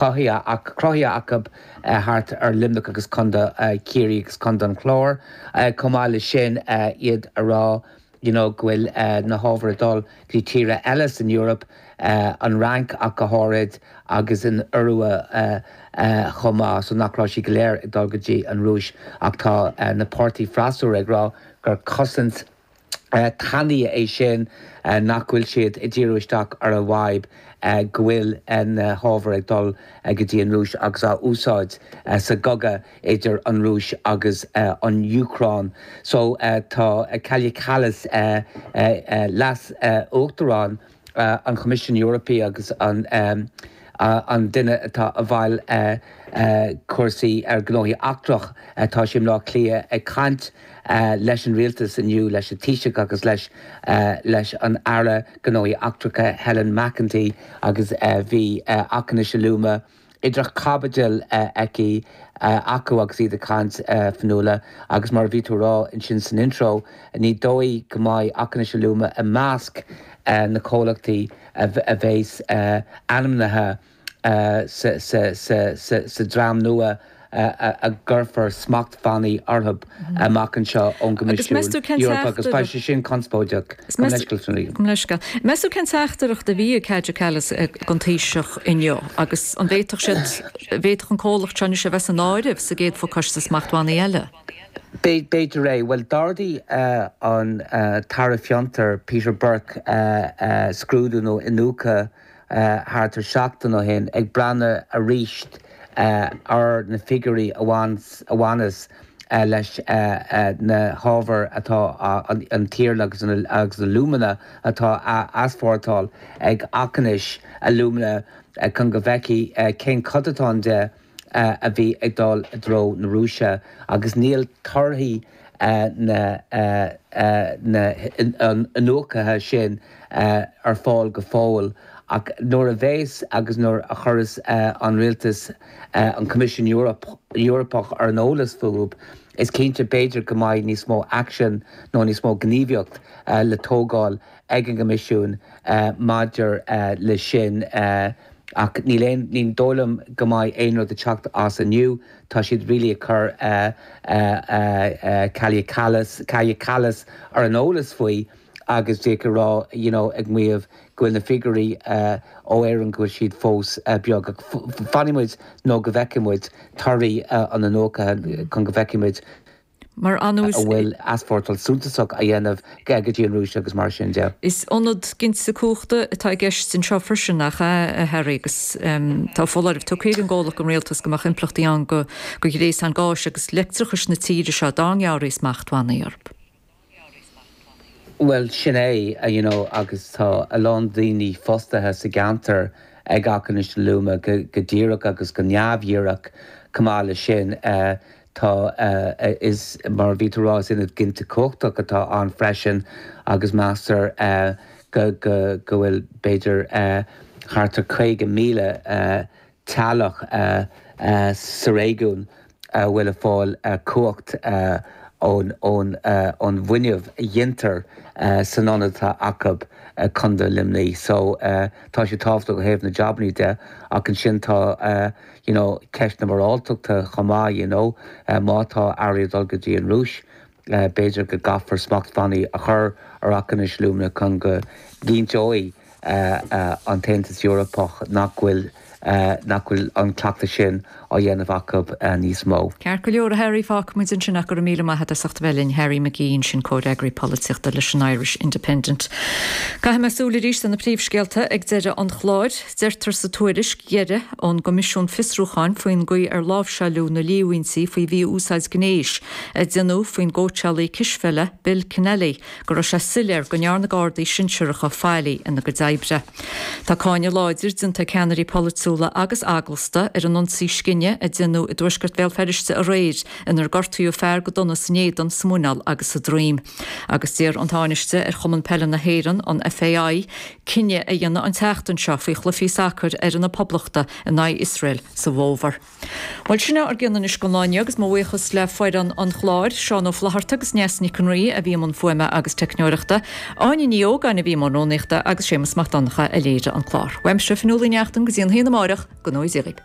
cruthaithe acu thart ar Luimneach agus Co. Chiarraí agus Co. an Chláir. Chomh maith leis sin, iad a rá you know go bhfuil na hábhair ag dul go dtí tíortha eile san Eoraip, an Fhrainc ach go háirid agus an Iorua chomh maith, so nach raibh siad go léir ag dul go dtí an Rúis ach tá na páirtithe freasúra ag rá gur cosaint, tanaí é sin nach bhfuil siad ag díriú isteach ar an bhfadhb go bhfuil na hábhair ag dul go dtí an Rúis agus á úsáid sa gcogadh idir an Rúis agus an Úcráin. So tá Kaja Kallas, Leas-Uachtarán, an Choimisiún Eorpaí agus an duine atá i bhfeighil cúrsaí ar ghnóthaí eachtracha, tá sí i mBleá Cliath ag caint leis an rialtas inniu, leis an Taoiseach agus leis an Aire Gnóthaí Eachtracha Helen McEntee agus bhí Aughinish Alumina, idir chaibidil aici, acu agus iad ag caint Fionnuala agus mar a bhí tú ag rá ansin san intro ní dóigh go mbeidh Aughinish Alumina i measc na gcomhlachtaí a bheas ainmnithe sa dream nua a gcuirfear smachtbhannaí orthu amach anseo ón gCoimisiún Eorpach agus beidh sé sin conspóideach. Meas tú cén teachtaireacht a bhí ag Kaja Kallas don Taoiseach inniu agus an bhféadfadh siad, bhféadfadh an comhlacht seo anois a bheith san áireamh sa gcéad phacáiste smachtbhannaí eile? B'fhéidir é. Bhuel, d'ardaigh an tAire Fiontar, Peter Burke, scrúdú nó iniúchadh. thart ar seachtain ó shin ag breathnú arís ar na figiúirí a bhaineas leis na hábhair atá an t-iarla agus an alumina atá á easpórtáil ag Aughinish Alumina chun go bhfeicfidh cén céatadán de a bhí ag dul i dtreo na Rúise agus níl torthaí na n-iniúchtaí sin ar fáil go fóill ach nuair a bheas agus nuair a chuireas an Rialtas an Coimisiún Eorpach ar an eolas fúthu is cinnte b'fhéidir go mbeidh níos mó aicsin, nó níos mó gníomhaíocht le tógáil ag an gCoimisiún maidir leis sin ach níl aon, ní dóigh liom go mbeidh aon rud ag teacht as inniu. Tá siad really ag cur Kaja Kallas ar an eolas faoi agus ag rá, you know, ag maíomh go bhfuil na figiúirí ó Éirinn go bhfuil siad fós beag ach fanfaidh muid nó go bhfeicfidh muid torthaí an iniúchta chun go bhfeicfidh muid. Mar anuas. a bhfuil easpórtáil suntasach á dhéanamh go dtí an Rúis agus mar sin de. Is ionad ginte cumhachta atá i gceist anseo freisin ach a Harry agus tá foláireamh tugtha ag an gcomhlacht don rialtas go mbeadh impleachtaí ann do ghréasán gáis agus leictreachais na tíre seo dá ngearrfaí smachtbhannaí orthu. Bhuel sin é you know agus tá a lán daoine fostaithe sa gceantar ag Aughinish Alumina go díreach agus go neamhdhíreach chomh maith le sin eh tá eh is mar a bhí tú a rá is ionad ginte cumhachtach atá ann freisin agus meastar eh go go go bhfuil b'fhéidir eh thart ar 50,000 eh teaghlach sa réigiún a bhfuil ag fáil cumhacht ón bhfuinneamh a ghintear san ionad atá acu i Co. Luimnigh so tá sé tábhachtach ó thaobh na jabannaí de ach ansin tá you know ceist na moráltachta chomh maith you know má tá earraí ag dul go dtí an Rúis B'fhéidir go gcaithfear smachtbhannaí a chur ar Aughinish Alumina chun go gcinnteoidh an tAontas Eorpach nach bhfuil nach bhfuil an cleachtas sin á dhéanamh acu níos mó. Ceart go leor, a Harry, fágfaidh muid ansin ach go raibh míle maith a't as ucht bheith linn. Harry McGee ansin, Comhfhreagraí Polaitíochta leis an Irish Independent. Caithfidh mé súil arís ar na príomhscéalta ag deireadh an chláir. Deirtear sa tuairisc dheiridh ón gCoimisiún Fiosrúcháin faoin gcaoi ar láimhseáileadh na líomhaintí faoi mhí-úsáid gnéis, a deineadh faoin gcóitseálaí cispheile Bill Kenneally go raibh sé soiléir go ndearna Gardaí sinsearacha faillí ina gcuid oibre. Tá cáineadh láidir déanta ag ceannairí polaitiúla agus eaglasta ar an ionsaí scine a deineadh i dtuaisceart Bhéal Feirste aréir inar gortaíodh fear go dona san éadan, sa mhuineál agus sa droim. Agus d'iarr an Tánaiste ar Chumann Peile na hÉireann, an FAI, cinneadh a dhéanamh an tseachtain seo faoi chluichí sacair fhoireann na Poblachta in aghaidh Iosrael sa bhfómhar. Bhuel, sin é ár gcion anois don lá inniu agus mo bhuíochas le foireann an chláir, Seán Ó Flaithearta agus Neasa Nic an Rí a bhí i mbun fuaime agus teicneoireachta, Áine Ní Ógáin a bhí i mbun rúnaíochta agus Séamus Mac Donncha a léirigh an clár. Uaimse, Fionnuala Uí Neachtain, go dtí a haon amárach, go ngnóthaí Dia dhaoibh.